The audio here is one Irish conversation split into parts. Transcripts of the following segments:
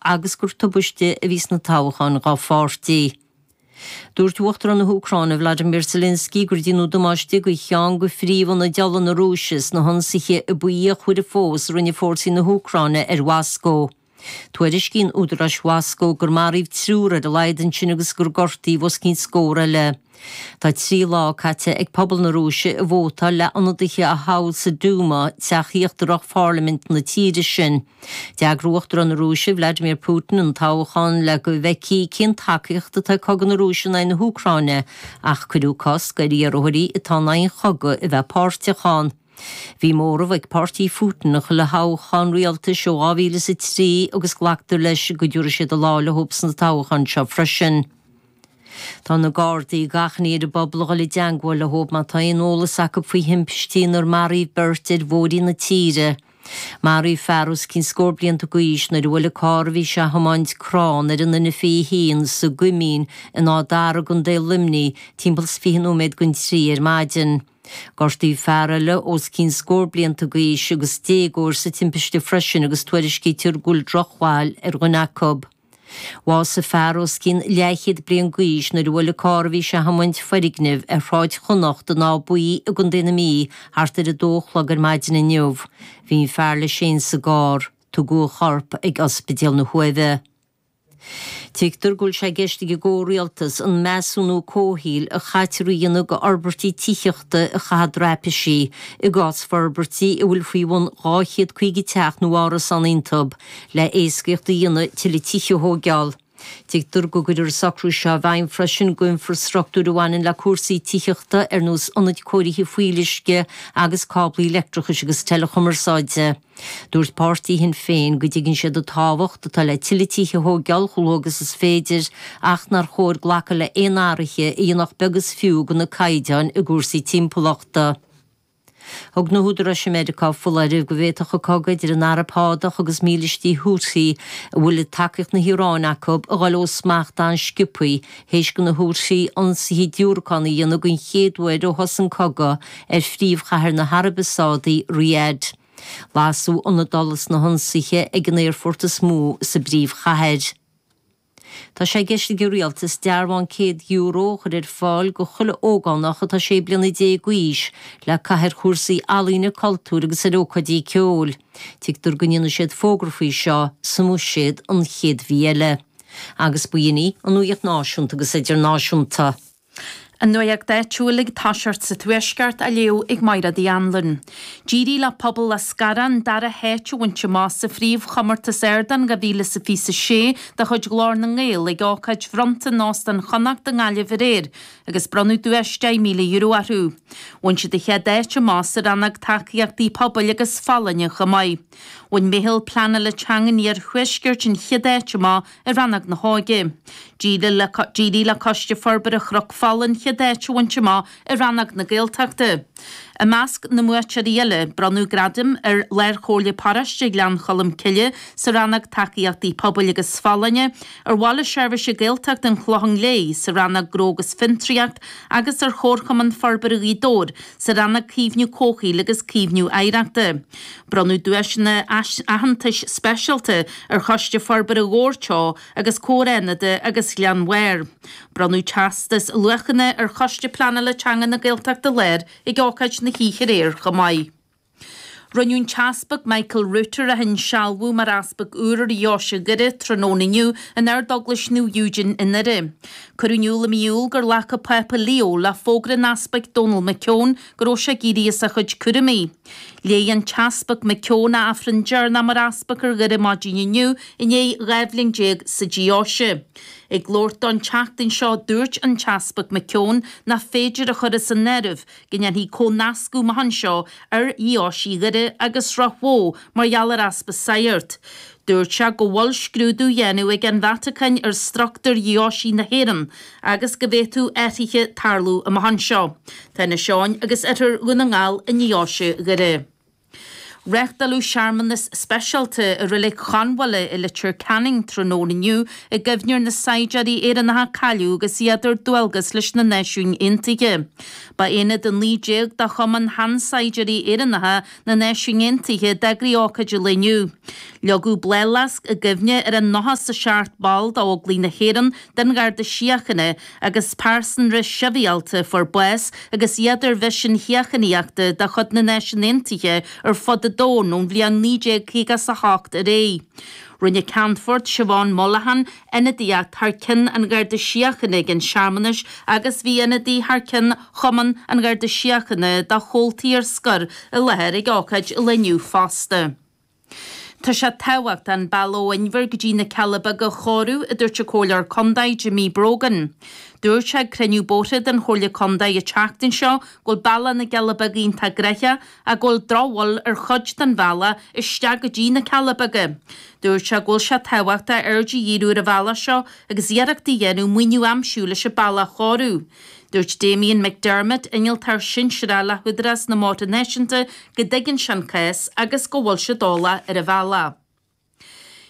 agus gur tubaiste a bhí sna toghcháin dhá pháirtí. Dúirt Uachtarán na hÚcráine Vladimir Zelensky gur déanadh damáiste do cheann de phríomh-ionaid ola na Rúise sna hionsaithe ab fhíochmhaire fós a rinne fórsaí na hÚcráine ar Mhoscó. Tuairiscíonn údaráis Mhoscó gur maraíodh triúr ar a laghad ansin agus gur gortaíodh os cionn scór eile. Tá trí lá caite ag pobal na Rúise ag vótáil le ionadaithe a thoghadh sa Duma, teach íochtarach pharlaimint na tíre sin. D'eagraigh Uachtarán na Rúise, Vladimir Putin, an toghchán le go bhfeicfí cén tacaíocht atá ag cogadh na Rúise in aghaidh na hÚcráine, ach cuireadh cosc ar iarrthóirí atá in aghaidh an chogaidh a bheith páirteach ann. Bhí móramh ag páirtí Phutin i chuile thoghchán rialtais ó 2003 agus glactar leis go dtabharfaidh siad a lá le hobair sna toghcháin seo freisin. Tá na gardaí ag achainí ar an bpobal a ghabháil i dteangmháil leob má tá aon eolas acu faoi thimpistí inar maraíodh beirt ar bhóithrí na tíre. Maraíodh fear os cionn scór bliain d'aois nuair a bhuail an carr a bhí sé a thiomáint crann ar an N a 21 sa gCoimín in Áth Dara, i gContae Luimnigh, timpeall is fiche nóiméad don trí ar maidin. Gortaíodh fear eile os cionn scór bliain d'aois agus déagóir sa timpiste freisin agus tuairiscítear go bhfuil drochbhail ar dhuine acu. Bhásaigh fear os cionn leathchéad bliain d'aois nuair a bhuail an carr a bhí sé a thiomáint foirgneamh ar Shráid Chonnacht in Áth Buí i gContae na Mí thart ar 2 a chlog ar maidin inniu. Bhí an fear leis féin sa gcarr. Tugadh a chorp chuig Ospidéal na hUaimhe. Tuigtear go bhfuil sé i gceist ag an gComhrialtas an measúnú comhshaoil a chaitear a dhéanamh do fhorbairtí tithíochta a chaitheamh i dtraipisí, i gcás forbairtí a bhfuil faoi bhun 250 teach nó árasán iontu, le héascaíocht a dhéanamh tuilleadh tithe a thóigeál. Tuigtear go gcuirfear an socrú seo i bhfeidhm freisin do infrastruchtúr a bhaineann le cúrsaí tithíochta ar nós ionaid cóirithe fuíolluisce agus cáblaí leictreachais agus teileachumarsáide. Dúirt Páirtí Shinn Féin go dtuigeann siad an tábhacht atá le tuilleadh tithe a thóigeál chomh luath agus is féidir ach nár chóir glacadh le aon athraithe a dhéanfadh beag is fiú de na caighdeáin i gcúrsaí timpeallachta. Thug na húdaráis i Meiriceá foláireamh go bhféadfadh an cogadh idir an Araib Shádach agus mílístí Houthi, a bhfuil tacaíocht na hIaráine acu, a ghabháil ó smacht an-sciopthaí, théis do na Houthi ionsaithe diúracán a dhéanamh den chéad uair ó thosaigh an cogadh ar phríomhchathair na hAraibe Sádaí, Riyadh. Lasadh ionad ola sna hionsaithe ag an aerfort is mó sa bpríomhchathair. Tá sé i gceist ag an Rialtas dearbhán €100 a chur ar fáil do chuile ógánach atá sé bliana déag d'aois le caitheamh ar chúrsaí ealaíne, cultúir agus ar ócáidí ceoil. Tuigtear go ndéanfaidh siad fógra faoi seo sa mBuiséad an chéad mhí eile. Agus b'in í an nuaíocht náisiúnta agus idirnáisiúnta. An nuacht áitiúil ag tosacht sa Tuaisceart á léamh ag Mairéad Uí Anluain. D'éirigh le Pobal Eascarrach an dara háit a bhaint amach sa phríomhchomórtas Ardán 2026 de chuid Ghlór na nGael ag ócáid bhronnta in Óstán Chonnacht i nGaillimh aréir agus bronnadh duais €10,000 orthu. Bhain siad an chéad áit amach sa rannóg Tacaíochtaí Pobail agus Folláine chomh maith. Bhain Meitheal Pleanála Teanga an Iarthuaiscirt an chéad áit amach i rannóg na hóige. D'éirigh le Coiste Forbartha Chnoc Fola an chéad áit a bhaint amach i rannóg na Gaeltachta. I measc na mbuaiteoirí eile, bronnadh gradaim ar Lárchomhairle Paróiste Ghleann Cholm Cille sa rannóg Tacaíochtaí Pobail agus Folláine, ar Bhaile Seirbhíse Gaeltachta an Chlocháin Léith sa rannóg Gnó agus Fiontraíocht agus ar Chomharchumann Forbartha Ghaoth Dobhair sa rannóg Caomhnú Comhshaoil agus Caomhnú Oidhreachta. Bronnadh duaiseanna aitheantais speisialta ar Choiste Forbartha Dhobhair Teo agus Comhar Fhánada agus Ghleann Bhairr. Bronnadh teastas luachanna ar Choiste Pleanála Teanga na Gaeltachta Láir ag ócáid na hoíche aréir chomh maith. Rinneadh an tEaspag Michael Router a insealbhú mar Easpag úr ar Dheoise Dhoire tráthnóna inniu in Ardeaglais Naomh Eugene i nDoire. Cuireadh in iúl i mí Iúil gur ghlac an Pápa Leo le fógra an Easpaig Donal McKeown go raibh sé ag éirí as a chuid cúraimí. Léigh an tEaspag McKeown a Aifreann deireanach mar Easpag ar Dhoire maidin inniu i ndiaidh dhá bhliain déag sa Deoise. Ag labhairt dó an tseachtain seo dúirt an tEaspag McKeown nach féidir a chur as an áireamh go ndéanfaí comhnascadh amach anseo ar Dheoisí Dhoire agus Ráth Bhoth mar gheall ar easpa sagart. Dúirt sé go bhfuil scrúdú á dhéanamh ag an Vatacáin ar struchtúr Dheoisí na hÉireann agus go bhféadfadh athruithe tarlú amach anseo. Tá Inis Eoghain agus oirthear Dhún na nGall i ndeoise Dhoire. Reáchtáladh searmanas speisialta i Reilig Chonbhála i Leitir Ceanainn tráthnóna inniu i gcuimhne ar na saighdiúirí Éireannacha a cailleadh agus iad ar dualgas leis na Náisiúin Aontaithe. Ba aonad 19 de Chumann Shean-Saighdiúirí Éireannacha na Náisiún Aontaithe a d'eagraigh ócáid an lae inniu. Leagadh bláthfhleasc i gcuimhne ar an nócha is a seacht ball d'Óglaigh na hÉireann, den Gharda Síochána, agus pearsanra sibhialta a fuair bás agus iad ar mhisin shíochánaíochta de chuid na Náisiún Aontaithe ar fud an domhain ón bhliain 1958 ar aghaidh. Rinne Ceannfort Siobhán Mollahan ionadaíocht thar cionn an Gharda Síochána ag an searmanas agus bhí ionadaí thar cionn Chumann an Gharda Síochána dá chomhaltaí ar scor i láthair ag ócáid an lae inniu fosta. Tá sé tábhachtach an bealach ó Inbhear go dtí na Cealla Beaga a chóiriú, a dúirt an Comhairleoir Contae, Jimmy Brogan. Dúirt sé ag cruinniú bóithre den Chomhairle Contae an tseachtain seo go bhfuil bealach na gCealla Beaga iontach gnoitheach go bhfuil drochbhail ar chuid den bhealach isteach go dtí na Cealla Beaga. Dúirt sé go bhfuil sé tábhachtach aird a dhíriú ar an bhealach seo agus iarracht a dhéanamh maoiniú a aimsiú leis an bealach a chóiriú. Dúirt Damien McDermott, Innealtóir Sinsearach le hÚdarás na mBóithre Náisiúnta go dtuigeann sé an cás agus go bhfuil siad eolach ar an bhealach.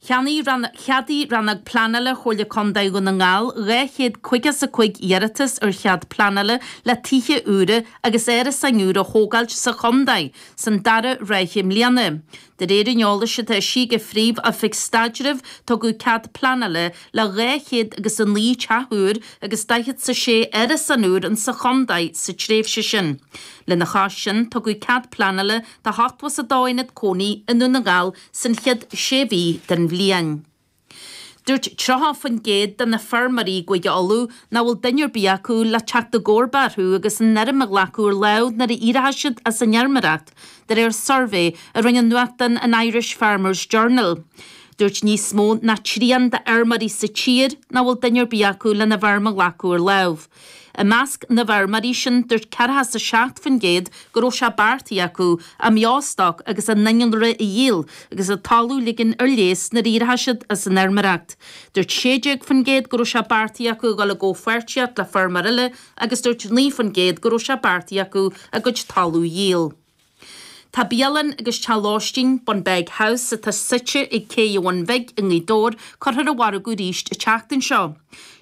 Cheadaigh Rannóg Pleanála Chomhairle Contae Dhún na nGall dhá chéad caoga is a cúig iarratas ar chead pleanála le tithe úra agus árasáin úra a thógáilt sa chontae san dara ráithe mbliana. De réir an eolais atá eisithe ag an Phríomh-Oifig Staidrimh tugadh cead pleanála le dhá chéad agus a naoi teach úr agus daichead 's a sé árasán úr insa chontae sa tréimhse sin. Lena chois sin tugadh cead pleanála do hochtó is a dó aonad cónaí i nDún na nGall san chéad sé mhí den bhliain. Dúirt 30% de na feirmeoirí i gCúige Uladh nach bhfuil duine ar bith acu le teacht i gcomharba orthu agus an fheirm a ghlacadh ar láimh nuair a éireoidh siad as an fheirmeoireacht, de réir suirbhé a rinne an nuachtán an Irish Farmers Journal. Dúirt níos mó ná trian d'fheirmeoirí sa tír nach bhfuil duine ar bith acu lena bhfeirm a ghlacadh ar láimh. I measc na bhfeirmeoirí sin, dúirt 47% go raibh sé beartaithe acu a mbeostoc agus a n-innealra a dhíol agus a dtalamh a ligean ar léas nuair a éireoidh siad as an fheirmeoireacht. Dúirt 16% go raibh sé beartaithe acu a dhul i gcomhpháirtíocht le feirmeoir eile agus dúirt 9% go raibh sé beartaithe acu a gcuid talaimh a dhíol. Tá bialann agus teach lóistín, Bunbeg House, atá suite ag Cé an Bhun Bhig i nGaoth Dobhair, curtha ar an mhargadh arís an tseachtain seo.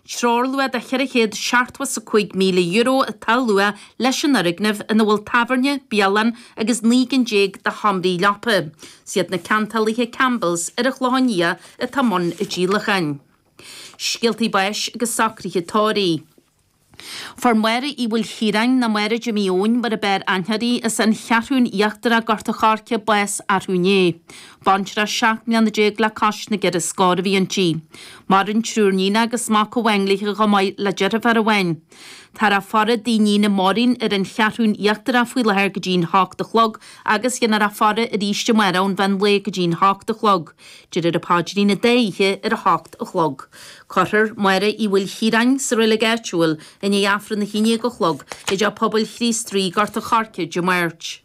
Treoirluach de €475,000 atá á lua leis an fhoirgneamh ina bhfuil tábhairne, bialann agus naoi gcinn déag de sheomraí leapa. Is iad na ceantálaithe Campbell's ar an Chlochán Liath atá i mbun an díolacháin. Scéaltaí báis agus socruithe tórraimh. Fuair Máire Uí Mhaoilchiaráin, nó Máire Jimí Eoin mar ab fhearr aithne uirthi, as an Cheathrún Íochtarach, Gort a' Choirce, bás arú inné. Baintreach seacht mbliana déag le cois na gceithre scór a bhí inti. Maireann triúr níon agus mac amháin léithi chomh maith le deirféar amháin. Táthar á faire i dtigh a níne Máirín ar an Cheathrún Íochtarach faoi láthair go dtí an hocht a chlog agus dhéanfar a faire arís amárach ón mheán lae go dtí an hocht a chlog. Déarfar an paidrín an dá oíche ar a hocht a chlog. Cuirfear Máire Uí Mhaoilchiaráin sa reilig áitiúil i ndiaidh Aifreann a haon déag a chlog i dTeach Pobail Chríost Rí, Gort an Choirce, Dé Máirt.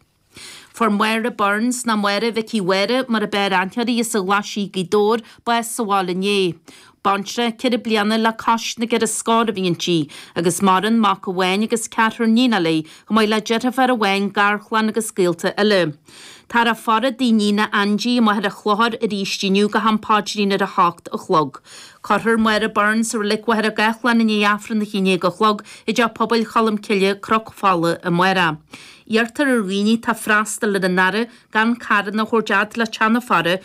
Fuair Máire Burns, nó Máire Mhicí Mháire mar ab fhearr aithne uirthi as an Ghlaisigh, Gaoth Dobhair, bás sa bhaile inné. Baintreach ceithre bliana le cois na gceithre scór a bhí inti, agus maireann mac amháin agus ceathrar níonacha léi, chomh maith le deirféar amháin, garchlann agus gaolta eile. Táthar á faire i dtigh a níne Andie amuigh ar an chlochar arís inniu go ham páidrín ar a hocht a chlog. Cuirthear Máire Byrne sa reilig Mhachaire Gathlán i ndiaidh Aifreann a haon dhéag a chlog i dTeach Pobail Cholm Cille, Cnoc Fola, amárach. Iarrtar ar dhaoine tá freastal ar an fhaire gan carranna a thabhairt fhad le teach na faire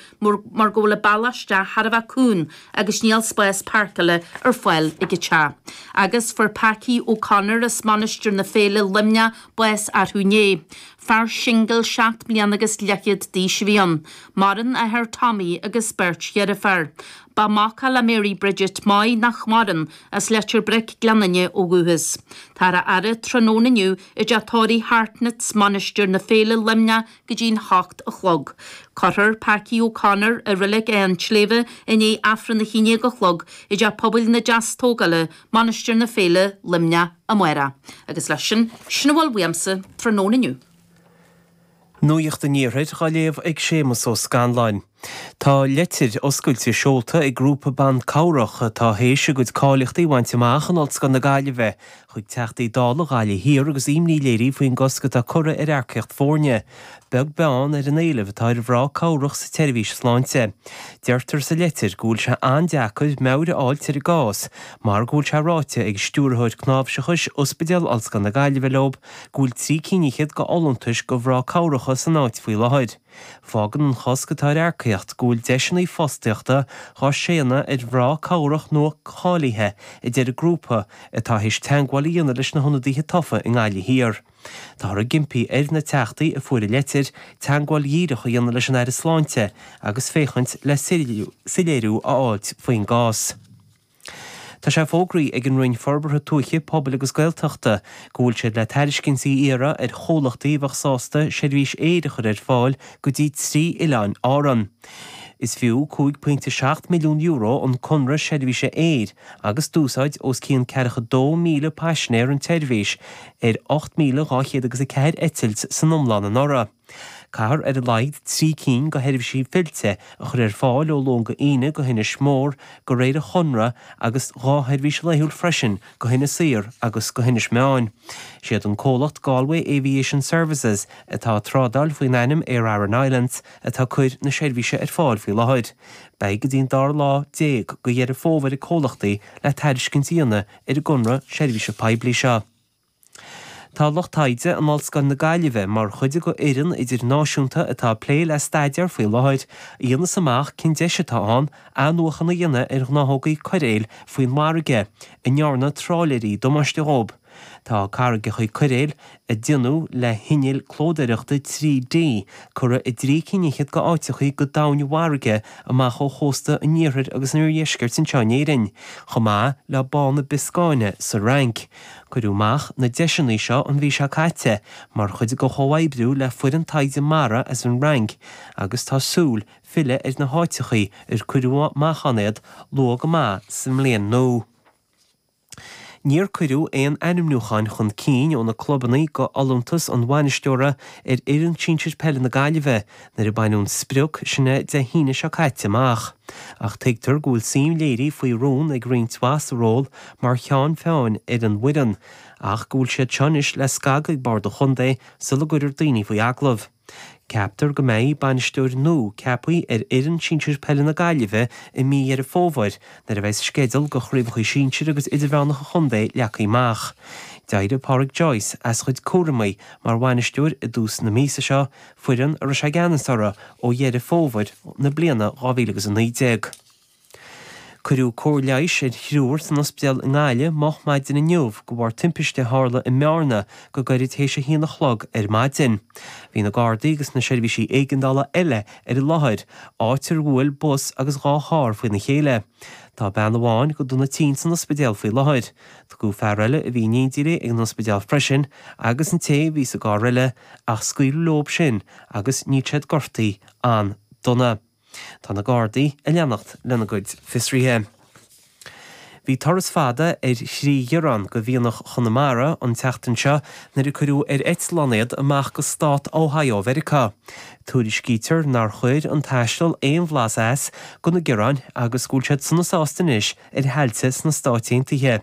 mar go bhfuil an bealach isteach thar a bheith cúng agus níl spás páirceála ar fáil ag an teach. Agus fuair Packy O'Connor as Mainistir na Féile, Luimneach, bás arthú inné. Fear singil seacht mbliana agus leithchéad d'aois a bhí ann. Maireann a athair Tommy agus beirt dheirféar. Ba mhac é le Mary Bridget Moy, nach maireann, as Leitir Bric, Gleann Fhinne, ó dhúchas. Táthar á fhaire tráthnóna inniu I dteach tórraimh Hartnett's, Mainistir na Féile, Luimneach, go dtí a hocht a chlog. Cuirfear Packy O'Connor, i Reilig Áth an tSléibhe i ndiaidh Aifreann a haon déag a chlog, i dTeach Pobail na Deastógála, Mainistir na Féile, Luimneach, amárach. Agus leis sin, sin a bhfuil uaimse tráthnóna inniu. Nuacht an Iarthair, dhá léamh ag Séamus Ó Scanláin. Tá leitir oscailte seolta ag grúpa ban cabhrach atá théis a gcuid cáilíochtaí a bhaint amach in Ollscoil na Gaillimhe chuig Teachtaí Dála Ghaillimh Thiar agus imní léirithe faoin gcosc atá curtha ar earcaíocht foirne beag beann ar an éileamh atá ar mhná cabhrach sa tseirbhís sláinte. Deirtear sa leitir go bhfuil sé an-deacair meabhair a fháilt ar an gcás mar go bhfuil sé ráite ag Stiúrthóir Cnáimhseachais Ospidéal Ollscoil na Gaillimhe leob go bhfuil trí cinn fhichead go fholúntais go mhná cabhrach san áit faoi láthair. Fágann an cosc atá ar earcaíocht go bhfuil deiseanna fostaíochta dhá séanadh ar mhná cabhrach nuacháilithe a deir an grúpa atá théis teagmháil a dhéanamh leis na hionadaithe tofa i nGaillimh Thiar. Táthar ag impí ar na Teachtaí a fuair an leitir, teagmháil dhíreach a dhéanamh leis an Aire Sláinte agus féachaint le soiléiriú a fháilt faoin gcás. Tá sé fógraithe ag an Roinn Forbartha Tuaithe, Pobail agus Gaeltachta go bhfuil siad le tairiscintí a iarradh ar chomhlachtaí a bheadh sásta seirbhís aeir a chur ar fáil go dtí trí oileán Árann. Is fiú €5.7 milliún an conradh seirbhíse aeir agus d'úsáid os cionn ceathracha dó míle paisinéir an tseirbhís ar ocht míle dhá chéad agus a ceathair eitilt san iomlán anuraidh. Caithfear ar a laghad trí cinn de sheirbhísí fillte a chur ar fáil ó Luan go Aoine go hInis Mór de réir an chonradh agus dhá sheirbhís laethúil freisin go hInis Oírr agus go hInis Meáin. Is iad an comhlacht Galway Aviation Services, atá ag trádáil faoin ainm Aer Arann Islands, atá ag cur na seirbhíse ar fáil faoi láthair. Beidh go dtí an dara lá déag de Dheireadh Fómhair ag comhlachtaí le tairiscint a dhéanamh ar an gconradh seirbhíse poiblí seo. Tá lucht taighde in Ollscoil na Gaillimhe mar chuid d'fhoireann idirnáisiúnta atá ag plé le staidéar faoi láthair a dhéanas amach cén deis atá ann athnuachan a dhéanamh ar ghnáthógaí coiréil faoin bhfarraige a ndearna tráiléirí damáiste dhóibh. Tá carraigeacha coiréil a déanadh le hinnill clódóireachta 3D curtha i dtrí cinn fhichead d'áiteachaí go domhain i bhfarraige amach ó chósta an iarthair agus an iardheiscirt anseo in Éirinn, chomh maith le Bá na Bioscáine sa Fhrainc. Cuireadh amach na deiseanna seo an mhí seo caite mar chuid de chomhoibriú le foireann taighde mara as an Fhrainc agus tá súil filleadh ar na háiteachaí ar cuireadh amach ann iad luath go maith sa mbliain nua. Níor cuireadh aon ainmniúcháin chun cinn ó na clubanna d'fholúntas an bhainisteora ar fhoireann sinsir peile na Gaillimhe nuair a baineadh an sprioc sin Dé hAoine seo caite amach, ach tuigtear go bhfuil suim léirithe faoi rún ag roinnt mhaith sa ról mar cheann feadhain ar an bhfoireann ach go bhfuil siad seo anois le scagadh ag Bord an Chontae sula gcuirear daoine faoi agallamh. Ceaptar go mbeidh bainisteoir nua ceaptha ar fhoireann sinsir peile na Gaillimhe i mí Dheireadh Fómhair nuair a bheas sceideal de chraobhachaí sinsir agus idirmheánacha an chontae leagtha amach. D'éirigh Pádraic Joyce as a chuid cúramaí mar bhainisteoir i dtús na míosa seo foireann a raibh sé i gceannas orthu ó Dheireadh Fómhair na bliana 2019. Cuireadh cóir leighis ar thriúr san ospidéal i nGaillimh moch maidin inniu de bharr timpiste a tharla i mBearna go gairid tar éis a haon a chlog ar maidin. Bhí na Gardaí agus na seirbhísí éigeandála eile ar an láthair, áit ar bhuail bus agus dhá charr faoina chéile. Tá bean amháin go dona tinn san ospidéal faoi láthair. Tugadh fear eile a bhí in éindí léi ag an ospidéal freisin agus an té a bhí sa gcarr eile Ach scaoileadh leob sin agus níl siad gortaithe an-dona. Tá na Gardaí ag leanacht lena gcuid fiosruithe. Bhí turas fada ar thrí ghearrán de mhianach Chonamara an tseachtain seo nuair a cuireadh ar eitleán iad amach go Stát Ohio Mheiriceá. Tuairiscítear nár chuir an taisteal aon bhlas as do na gearráin agus go bhfuil siad sona sásta anois ar thailte sna Stáit Aontaithe.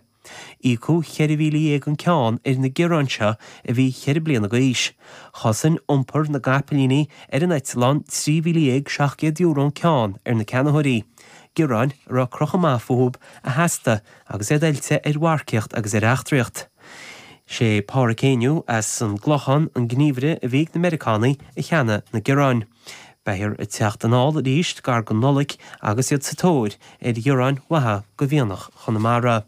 Íocadh ceithre mhíle dhéag an ceann ar na gearráin seo a bhí ceithre bliana d'aois. Chosain iompar na gcapaillíní ar an eitleán trí mhíle dhéag seacht gcéad euro an ceann ar na ceannaitheoirí, gearráin a raibh crochadh maith fúthu a theastaigh agus iad oilte ar mharcaíocht agus ar eachtraíocht. Is é Pádraic Heanue as an gClochán an gníomhaire a bhí ag na Meiriceánaigh a cheannaigh na gearráin. Beifear ag teacht anall arís gar don Nollaig agus iad sa tóir ar ghearráin mhaithe de mhianach Chonamara.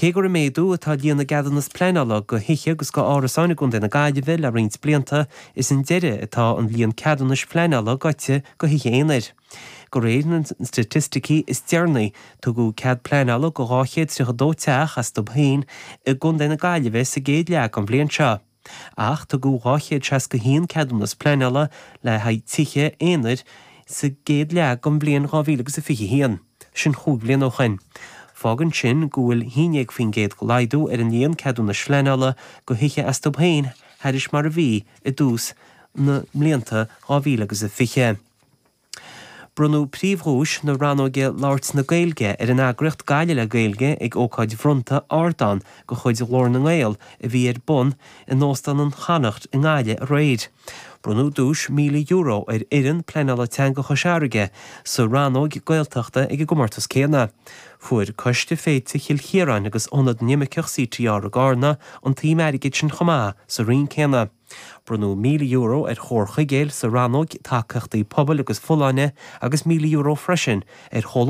Cé gur ag méadú atá líon na gceadúnas pleanála do thithe agus d'árasáin i gContae na Gaillimhe le roinnt blianta, is chun deiridh atá an líon ceadúnais phleanála gaibhte do thithe aonair. De réir na staitisticí is deireanaí, tugadh cead pleanála do 232 teach astu féin i gContae na Gaillimhe sa gcéad leath den bhliain seo. ach tugadh 261 ceadúnas pleanála le haghaidh tithe aonair sa gcéad leath den bhliain 2021, sin chúig bhliana ó shin. Fágann sin go bhfuil 11% de laghdú ar an líon ceadúnais phleanála do thithe astu féin thairis mar a bhí i dtús na mblianta 2020. Bronnadh príomhdhuais na rannóige 'Labhairt na Gaeilge' ar an eagraíocht Gaillimh le Gaeilge ag ócáid bhronnta 'Ardán' de chuid Ghlór na nGael a bhí ar bun in Óstán an Connacht i nGaillimh aréir. Bronnadh duais €1,000 ar fhoireann Pleanála Teanga Chois Fharraige sa rannóg 'Gaeltachta' ag an gcomórtas céanna. Fuair Coiste Féilte Chill Chiaráin agus Ionad na nImirceach CTR i gCarna an tsuim airgid sin chomh maith sa roinn céanna. Bronnadh €1,000 ar Chór Chuigéil sa rannóg Tacaíochtaí Pobail agus Folláine agus €1,000 freisin ar Chomhlacht